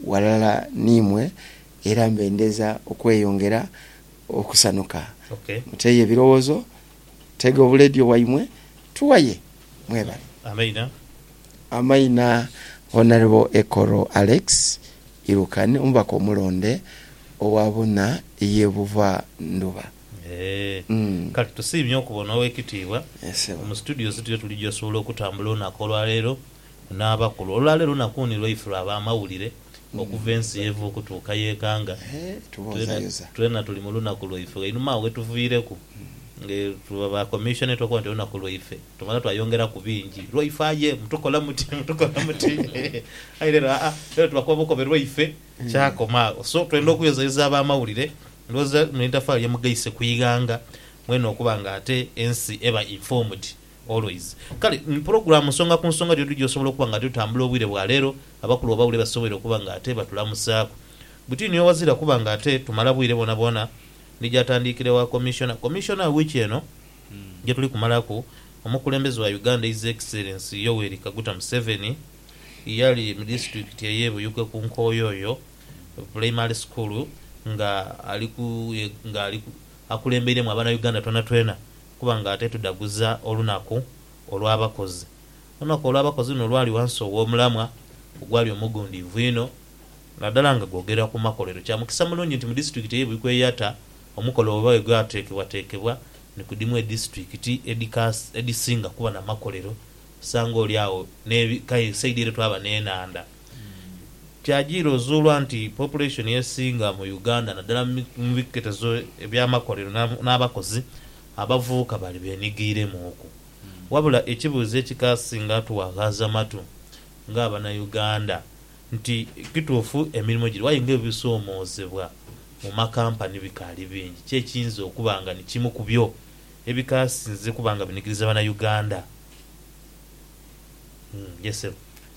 ghalala n'imwe era mbe ndheza okweyongera okusanuka. Muteeyo ebirowoozo, tega obuleediyo bwaimwe tughaye. Mwebale. Amaina. Amaina, Honourable Ekoro Alex Irukan, omubaka omulonde owa Buna y'e Buva Ndhuba. Eeh. Kale tusiimye okubona Ow'ekitiibwa mu studios tuyo tuli gy'osobola okutambula olunaku olwaleero. n'abakulu. Olwaleero nakuni lwaife lwa b'amawulire okuva ensi y'eva okutuuka y'ekanga. Twena tuli mu lunaku lwaife einhuma agho wetuviireku. Nga tuba ba commission twakoba nti olunaku lwaife, tumala twayongeraku bingi. Lwaife aye mutukola muti, mutukola muti. Aye leero aa, leero tubakuba bukobe lwaife kyakoma agho. So twenda okuyozayoza ab'amawulire. Ndhowooza lino eitafaali lye mugaise ku ighanga mwene okuba nga ate ensi eba informed. Always. Kale ni pulogulaamu nsonga ku nsonga dh'odhu gy'osobola okuba nga dh'otambula obwire bwa leero, abakulu abaawule basoboire okuba nga ate batulamusaaku. Buti niyo wazira kuba nga ate tumala bwire bwonabwona ni gy'atandiikira ewa Commissioner. Commissioner, wiiki eno gye tuli kumalaku, omukulembeze wa Uganda His Excellency Yoweri Kaguta Museveni yali mu disitulikiti ey'e Buyuge ku Nkoyoyo Pulayimale School nga ali ku nga ali ku akulembeiremu abanauganda twenatwena kuba nga ate tudhaguza olunaku olw'abakozi. Olunaku olw'abakozi luno lwali ghansi ow'omulamwa ogwali omugundiivu inho, nadala nga gwogera ku makolero. Kya mukisa mulungi nti mu disitulikiti ey'e Buikweyatta, omukolo bweba bwegwateekebwateekebwa, ni ku dhimu edisitulikiti edhisinga kuba na makolero, osanga oli agho n'ebika esaidi ere twaba n'enhandha. Kyajiira ozuulwa nti population esinga mu Uganda naddala mu biketezo eby'amakolero n'abakozi abavubuka bali benigeiremuuku. Wabula ekibuuzo ekikasinga tuwaghaaza matu nga Banauganda nti kituufu emirimo giriwo aye nga ebisoomoozebwa mu makampani bikaali bingi. Ki ekiyinza okuba nga ni kimu ku byo ebikasinze okuba nga binigiriza Banauganda? Yee Ssebo.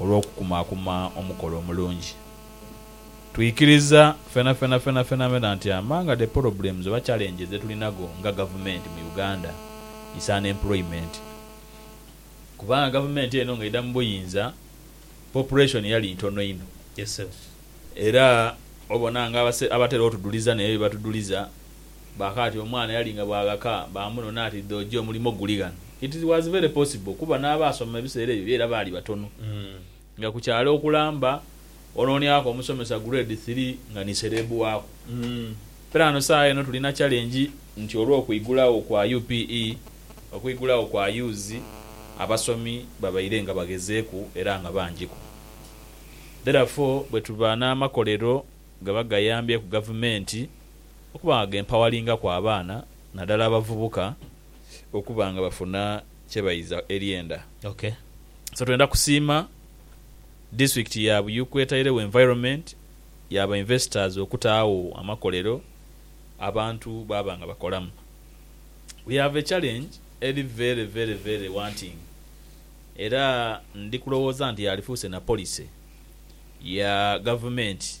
olw'okukumaakuma omukolo omulungi. Twikiriza fenafena fenafenafena nti among the problems oba challenges dhe tulinago nga gavumenti mu Uganda is unemployment kubanga gavumenti eno ng'eidha mu buyinza population yali ntono inho era obona nga abatera otudhuliza naye bye batuduliza Bakaati omwana yali nga bwaghaka baamunona ati dhoojo omulimo guli ghano. It was very possible kuba n'abaasoma ebiseera ebyo byo era baali batono. Nga ku kyalo okulamba onooniaghoku omusomesa grade three nga ni sereebu waaku. Piraano saagha eno tulina challenge nti olw'okwigulagho kwa UPE, okwigulagho kwa UZ, abasomi babaire nga baghezeeku era nga bangiku. Therefore bwetuba n'amakolero gaba gayambyeku gavumenti, okuba nga gempawalingaku abaana nadala abavubuka okuba nga bafuna kyebaiza eryenda. Ok so twenda kusiima District ya Buyuku etairegho environment ya ba investors okutaagho amakolero abantu baaba nga bakolamu. We have a challenge eri very very very wanting era ndi kulowooza nti yalifuuse na policy ya gavumenti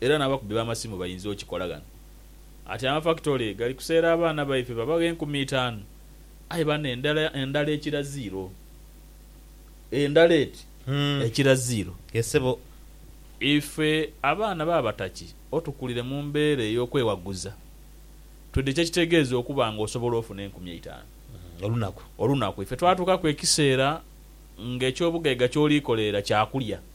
era n'abakubi b'amasimu bainza okikola ghano. Ati amafakitole gali kuseera abaana baife babagha enkumi itaanu, aye bano endala endala ekira ziiro. Endala eti ekira ziiro. Ye sebo, ife abaana ba Bataki otukulire mu mbeera ey'okwewaguza twidhe kye kitegeeza okuba nga osobola ofuna enkumi eitaanu. Olunaku. Olunaku. Ife twatuukaku ekiseera nga eky'obugaiga ky'oli koleera kyakulya.